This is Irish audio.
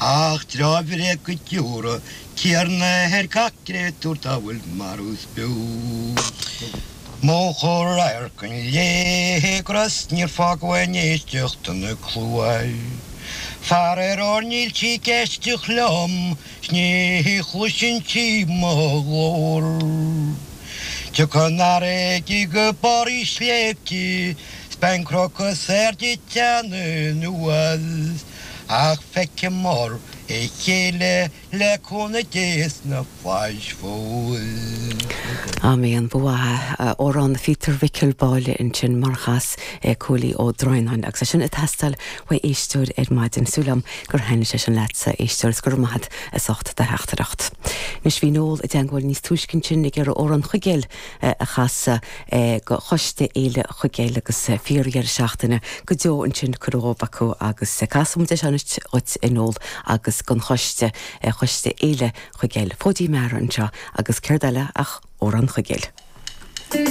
Ach trócaire go dtabharfaidh Tiarna ar gach créatúr dá bhfuil marbh is beo. Múchadh radharc an léith go raibh 's níor fágadh aon éisteacht ina cluais. Faraor níl sí ag éisteacht liom 's ní chloiseann sí mo ghlór. Tiocfaidh an fharraige go barr na sléibhte 's beidh an cnoc is airde ag teannadh anuas. Ach feicfidh muid a chéile le cúnamh Dé sna flaithis fós. Amen. An bua a amhrán Phíotair Mhicil Báille ansin mar chas é Cóilí Ó Droighneáin agus é sin ag teastáil uaidh éisteoir ar maidin. Súil liom gur thaitnigh sé sin leat a éisteoir is go raibh maith a't as ucht do theachtaireacht. Anois bhí Noel i dteangmháil níos túisce ansin ag iarraidh amhrán Chuigéil a chasadh do Choiste Fhéile Chuigéil agus fíor dheireadh seachtaine go deo ansin curtha dhóibh acu agus casfaidh muid é seo anois dhuit a Noel agus don choiste, Choiste Fhéile Chuigéil. Fóidín Meara anseo agus céard eile ach Amhrán Chuigéil.